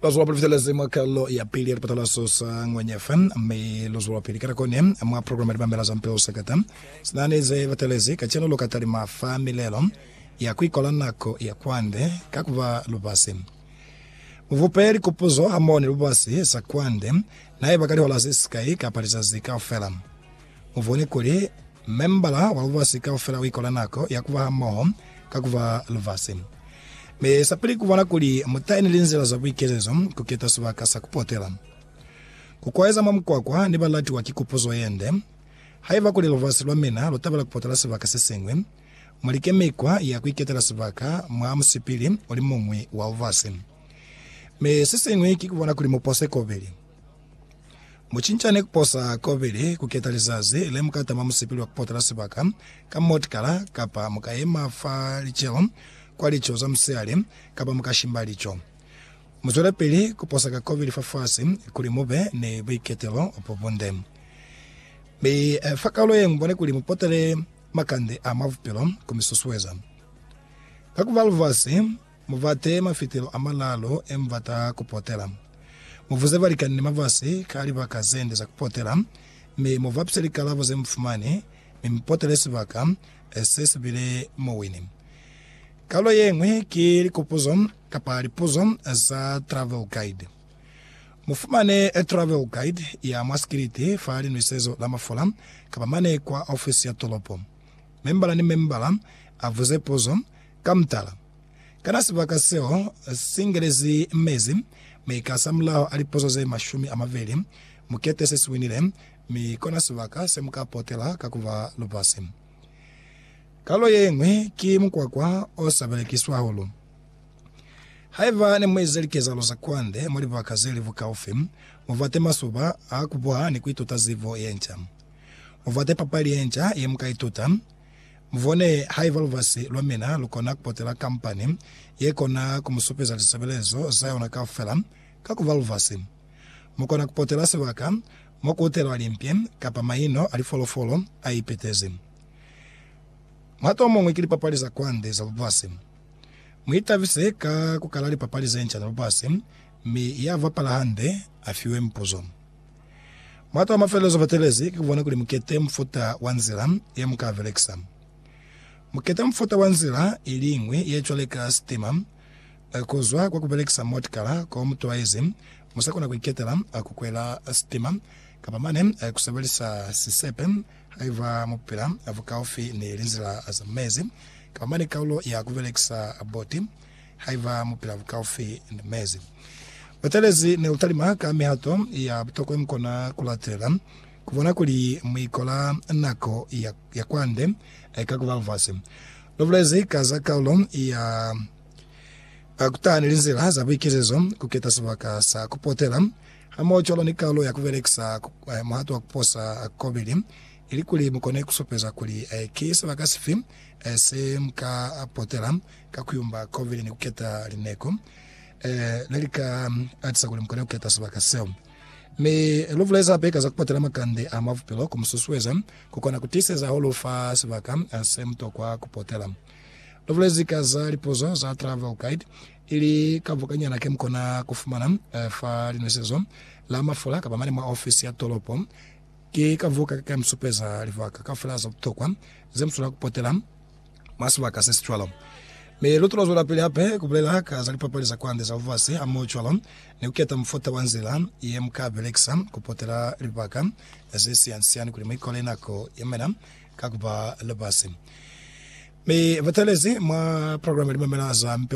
Lo zwela Pulefitelezi mwa Kalo ya Pili ya Lipatalaso sa Ngwenya FM, mi lo zwelapili ka nako ne mwa programa Libambela za Mpeo Sekata. Sina ni ze batelezi kacenu, lu ka talima fa milelo ya ku ikola nako ya kwande ka ku ba lubasi. Mu vupe likupuzo hamoho ni lubasi sa kwande, na iba ka lihola ze sikai kapa lizazi kaufela. Mu bone kuli membala wa lubasi kaufela uikola nako ya kuba hamoho ka kuba lubasi. Mi sapili kubona kuli mutai ni linzila za buikelezo, kuketa sibaka sa kupotela, kukwaeza mwa mukwakwa ni balatiwa ki kupuzo yende. Haiba kuli lubasi lwa mina lutabela kupotela sibaka sesiñwi, mulike mikwa ya kuiketela sibaka mwa musipili ulimuñwi wa lubasi. Mi sesiñwi ki kubona kuli mupose kobili. Mucincane kuposa kobili kuketa lizazi lemukatama musipili wa kupotela sibaka ka motikala, kapa mukayema fa licelo kwa lico za musihali, kapa mukashimba lico. Muzwelepili kuposa ka kobili fafasi kuli mube ni buiketelo bobunde. Mi fa kaulo ye mubone kuli mupotele makande a mwa bupilo kumizuzueza. Ka kuba lubasi, Mu bate mafitelo a malalu e mu bata ku potela. Mu vuze balikani ni mabasi ka libaka ze nde za ku potela, mi mu ba pise likalabo ze mu fumani, mi mu potele sibaka se si bile muwini. Kalulo ye ñwi ki likupuzo kapa lipuzo za Travel Guide. Mu fumane Travel Guide ya mwa sikiliti fa Linwisezo la Mafula kapa mane kwa ofisi ya tolopo. Membala ni membala a vuze puzo Ka mutala, kana sibaka seo si ngelezi mezi mi kasamulaho a liposo ze mashumi a mabeli mukete se si winile, mi kona sibaka se mu ka potela ka ku ba lubasi? Kalulo ye ñwi ki mukwakwa o sa belekiswi hahulu. Haiba ne mu ize likezahalo za kwande mwa libaka ze li bukaufi, mu bate masuba a ku buha ni ku ituta zibo ye nca. Mu bate papali ye nca ye mu ka ituta. Mubone haiba lubasi lwa mina lukona kupotela kampani yekona kumusupeza lisebelezo zayona kaufela ka kuba lubasi. Mukona kupotela sibaka mokuutelwa limpi kapa maino alifolofolo aipetezi. Muhato omuñwi ki lipapali za kwande za lubasi. Muitabise ka kukala lipapali zenca za lubasi, mi yabapala hande afiwe mipuzo. Matu a mafelezo ba telezi ki ku bona kuli mu kete mufuta wa nzila ye mu ka belekisa. Mu keta mufuta wa nzila i liñwi ye cwale ka sitima. Ku zwa kwa ku belekisa motikala ko mu twaezi, mu sa kona ku iketela ku kwela sitima kapa mane ku sebelisa sisepe haiba mu pila bukaufi ni linzila za mezi kapa mane kaulo ya ku belekisa boti. Haiba mu pila bukaufi ni mezi, butelezi ne butalima ka mihato ya butokwa mu kona ku latelela ku bona kuli mu ikola nako ya, ya kwande ka ku ba mufasi. Lu bulezi ka za kaulo ya Ba ku taha ni linzila za buikezezo, ku keta sibaka sa ku potela, hamoho cwalo ni kaulo ya ku belekisa muhato wa ku posa kobili ilikuli mu kone ku supeza kuli ki sibaka sifi se mu ka potela. ka ku yumba kovile ni ku keta lineko le li ka atisa kuli mu kone ku keta sibaka seo. Mi lu bulezi hape ka za ku patela makande a mwa bupilo ku mu susueza ku kona ku tiiseza ho lu fa sibaka se mu tokwa ku potela. Lu bulezi ka za lipuzo za Travel Guide, ili ka bukanyana ke mu kona ku fumana fa linwesezo la mafula kapa mane mwa ofisi ya tolopo. Ki ka buka ka ka mi supeza libaka kaufela za butokwa ze mu swanela ku potela. mwa sibaka se si cwalo. Mi lu tula zwelapili hape ku bulela ka za lipapali za kwande za lubasi hamoho cwalo ni ku keta mufuta wa nzila ye mu ka belekisa ku potela libaka ze siani-siani kuli mu ikole nako ye mena ka ku ba lubasi. Mi batalezi mwa programe Limamela za Mipeo